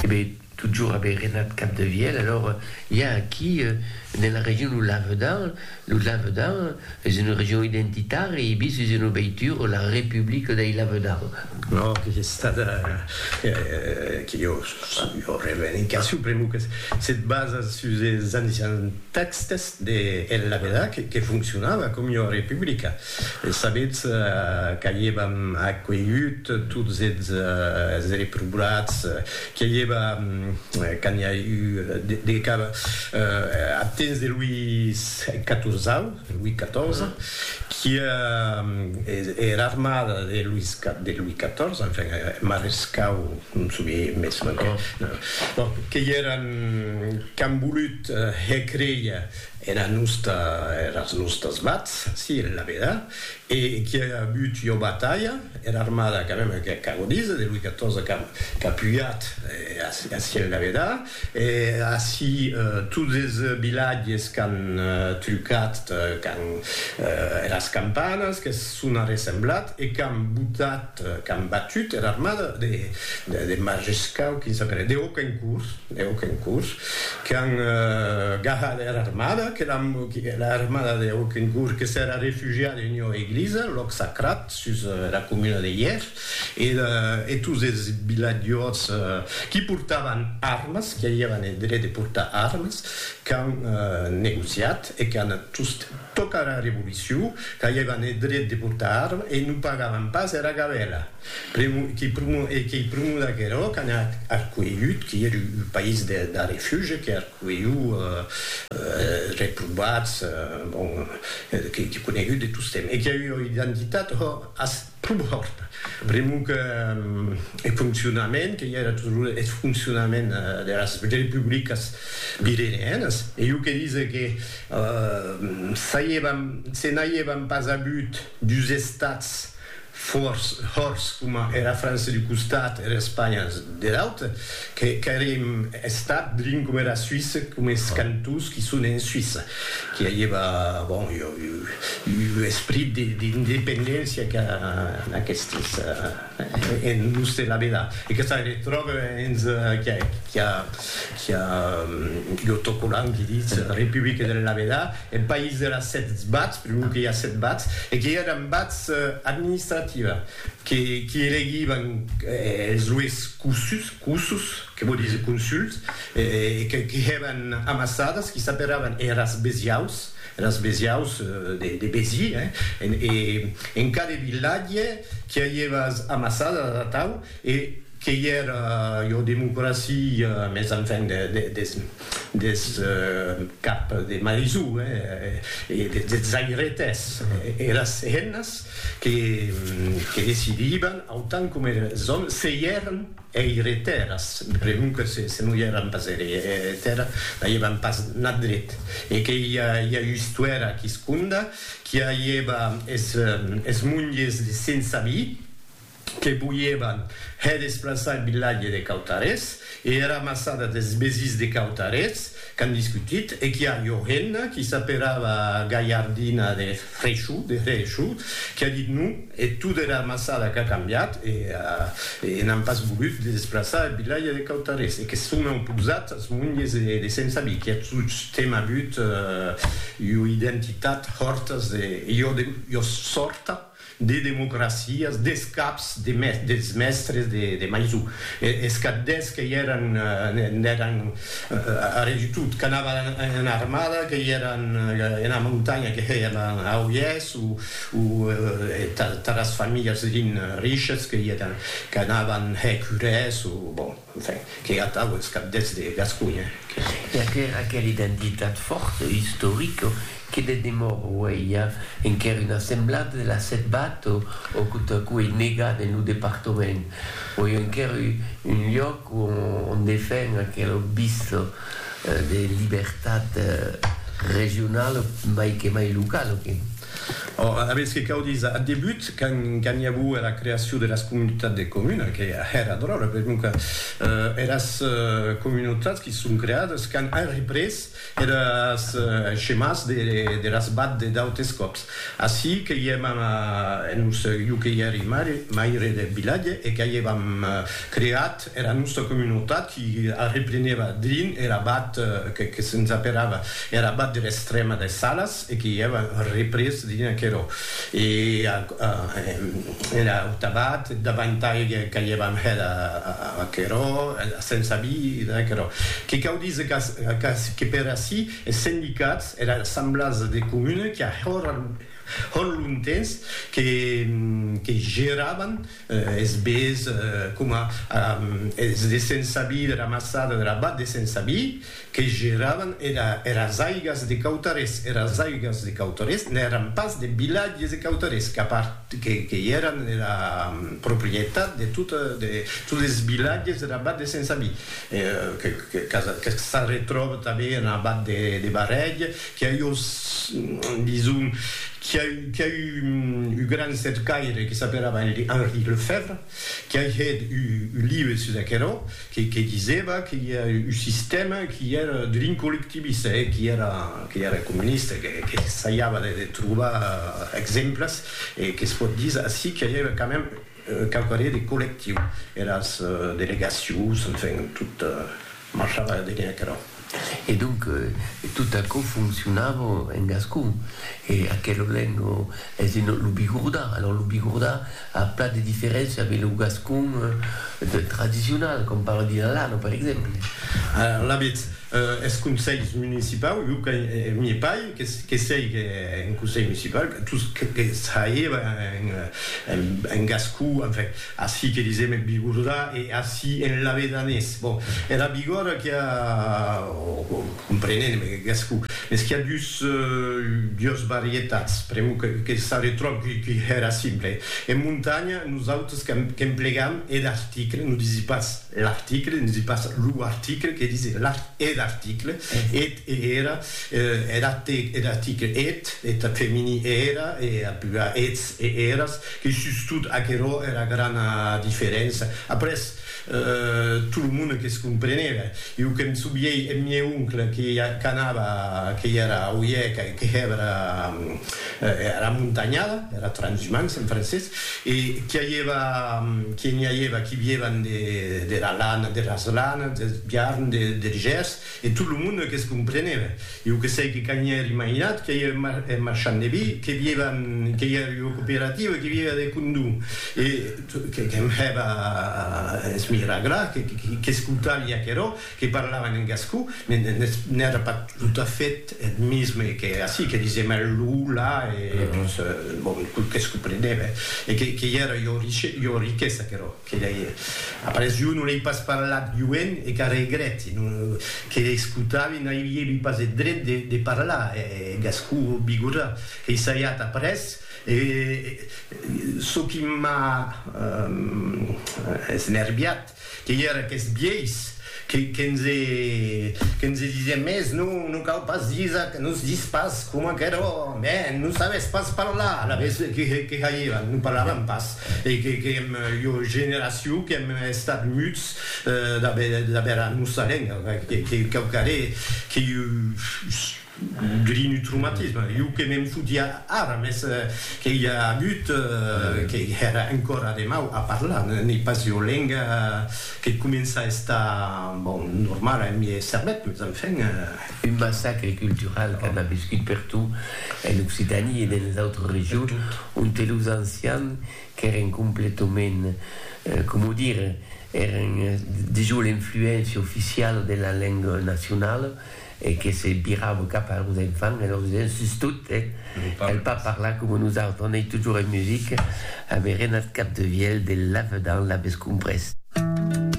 Ebe, totjorn ebe Renat Capdevièlh, alors i a aquí nela region lo Lavedan, lo Lavedan es una region identitària e bis es una veitura la Republica dei Lavedan. No, que es estada, que jo jo revendicacion pr'amor que se basa sus es ancians tèxtes de El Lavedan que fonccionava com ua republica. E sabetz qu'aievam acuelhut tots es reprobats, qu'i aieva, quand i a eu de cap, ath temps de Louis Catorzau, Louis Catorze, qui er armada de Louis de Louis Catorze, enfin, eth marescau, non somiei mès manquen, bon, qu'i eran qu'an volut hèr créer Era nosta, eras nostas vats, si, la veda, e qui a agut ua batalha, era armada quand même que ac ago díser, de Louis XIV qu'a qu'a pujat ací en la veda, e ací tots es vilatges qu'an trucat quand eras campanas, qu'es sona ressemblat e qu'an botat, qu'an batut era armada de Majescau, quin sap era, de Hoquencourt, de Hoquencourt, qu'an gahat era armada, que l'an, era armada de Hoquencourt que s'èra refugiada en ua eglisa, lòc sacrat, sus era comuna de Hièr, e e tots es vilatjòts qui portavan armes, qui avián eth dret de portar armes, qu'an negociat e qu'an tost Tòca era Revolucion, qu'aievan eth dret de portar arma e non pagavan pas era gabèla. E qu'ei prumor d'aquerò qu'an arcuelhut, qui ère un país d'arrefuge, que arcuelhú reprobats, bon, que conegut de tostemp. E qu'i a ua identitat, hò, Pum hòrt, pr'amor que eth foncionament, que i era toujours eth foncionament deras republicas virenianas, e jo que dise que se n'aiévam pas avut dus estats hòrts coma era França d'un costat e era Espanha der aute, Qu'èrem estat drin coma era Suisse, coma es cantons qui son en Suisse, qui aieva, bon, ua esprit d'independéncia que en aquestes, en los de la Vela. E que se retròbe hens qui a ua autocolant qui ditz Republique de la Vela, eth país de las sèt bats, pr'amor que i a sèt bats, e que i èran bats administrativa. que qui elegivan es lues cossus, que vò díser consuls, e que qui hèvan amassadas, qui s'aperavan eras besiaus, eras besiaus de Besi, e en cada vilatge qui avieva as amassadas atau, e qu'ei era, jo, democracia, mes enfin, des. des cap de maisó e des zairetes, eras hennas que decidiban, autant coma es òmes, se i èran eiretèras, pregunque se non i èran pas eiretèras, n'aievan pas nat dret, e que i a ua istuèra quisconda qui aieva es monges de sense vi, que voièvan hè desplaçar eth vilatge de Cautarés e era amassada des vesins de Cautarés qu'an discutit e qu'i a ua hemna qui s'aperava Galhardina de Freixo, de Hrecho, qui a dit non e tota era amassada qu'a cambiat e n'an pas volut de desplaçar eth vilatge de Cautarés e que se son auposats as monges de Sensabí qui a tostemp avut ua identitat hòrtas de Iòrta. de democracias, des caps de mes, dels mèstres de, de Maisou, e, es caddes que i èran, n'èran arrè du tot, qu'anavan ena armada, que i èran ena montanha, que hèiam a Oiès, o, o tatas familhas rin, riches, que i èran, qu'anavan hèr curès, o, bon. Enfin, qu'ei atau es cabdets de Gasconha que. Perquèr aquela identitat fòrta, istorica, que de demor uei a enquèr una semblada de la setbata o o quo ta quo ei negada en lo departament. Uei enquèr un lloc o on defen aquela obvista de libertat regionala mai que mai locala que. Ora, aves que cau díser, ath debut, quand i auo era creacion deras comunitats de comuna, que hèra dròlla, per non que eras comunautats qui son creades quand an représ eres chemàs deras bad de d'autes còps. Ací que i èm en un, jo que i èri maire deth vilatge e qu'a i èvam creat Era nòsta comunotat i arrepleneba drin er abat que que se'ns aperava er abat der Estrèma des Salas e que i èva représ drin aquerò. E a er aut abat davantai qu'aièvam hèt aquerò se'ns avi de aquerò. Que cau díser qu'ac que per ací es sendicats, era assemblasa de comuna qu'a hòr hòr lontens que que geravan Es bés coma es de Sensabi, de la Massada, de la Bat de Sensabi, que geravan eras aigas de Cautarés. Eras aigas de Cautarés n'èran pas de vilatges de Cautarés, que i èran era proprietat de totes es vilatges dera Bat de Sensabi, que s'arretròba tanben ena Bat de Barrèg Qu'i a eu, dison, qu'i a eu, qu'i a eu un gran cercaire que s'aperava Henri Lefèvre, qu'i a hèt un live sus aquerò, que, que disèva que i a un sistèma qu'i èra drin collectivista, e qu'i èra, qu'i èra comunista, que, que essaiava de, de trobar exemples, e que's pòt díser ací qu'i aviá quand même quauquarré de collectiu, eras delegacions, enfin, tot, Marchava de gaire aquerò. E donc, tot aquò foncionava en gascon. E aquel olèn lo es dins lo bigordà. Alòrs lo bigordà a plan de diferéncia de lo gascon tradicional, com parla dins l'Alano, per exemple. Alavetz, es conselhs municipaus, jo que n'i pai, que sèic en conselh municipau, tot que saiba en gascon, enfin, Ací que disèm eth bigordà e ací en lavedanés. Bon, era bigòrda qu'i a, o comprenem en gascon, mès qu'i a dus, dues varietats, pr'amor que s'arretròb qu'i hèra simple. En montanha, nosautres qu'emplegam eth article, non disi pas l'article, disi pas lo article, que disi eth article, eth e era, er article, eth, eth femini, era, e ath plural, eths e eras, E sustot aquerò era grana diferença. Après, tot lo monde que's comprenèva. Jo que'm souviei eth mieu oncle que qu'anava, que i era oièc, que hèvera era montanhada, era transhumance en francés, e qui aieva, qui n'i aieva qui viévan dera lana, deras lanas, deth biarn, der gers, E tot lo monde que's comprenève. Iu que sei que quand i èri mainat, que i èri marchand de vi, que vieva, que i èri ua cooperativa, que vieva de condó, e que'm hèva esmiragrar, qu'escoutavi aquerò, que parlavan en gascon, n'èra pas tot a fait eth misme que ací, que disèm el, lo, la, e tot que's comprenève, e que i èra ua riquesa aquerò. Que lei, après jo non lei pas parlat joen e qu'a regrèti, non, que lei escotavi n'aivie lu pas eth dret de, de parlar, e gascon o bigorrà, qu'ei saiat après, e çò qui m'a esnerviat, qu'ei era qu'eth vielhs, que, que ens e, que ens e disien, mès non, non cau pas díser ac, non es dis pas coma aquerò, mès non sabes pas parlar, alavetz que, que, que faiévan, non parlavan pas, E qu'èm ua generacion qu'èm estat muts d'aver era nossa lenga, que quauquarré que iu drin un traumatisme, iu que me'n fotia ara, mès que i a agut que èra encora de mau a parlar, n'ei pas ua lenga que comença a estar, bon, normala en miei cervèth, mès enfin. Un massacre cultural qu'an aviscut pertot en Occitanie e dens d'autres regions onte los ancians qu'èren completament, coma dire, èren dejos l'influéncia oficiala de la lenga nacionala e que se virava cap a los enfants e lor disián, sustot, cal pas parlar coma nosautres, anèi totjorn en musica, avèren ath cap de vielh de lavedan, l'aves comprés.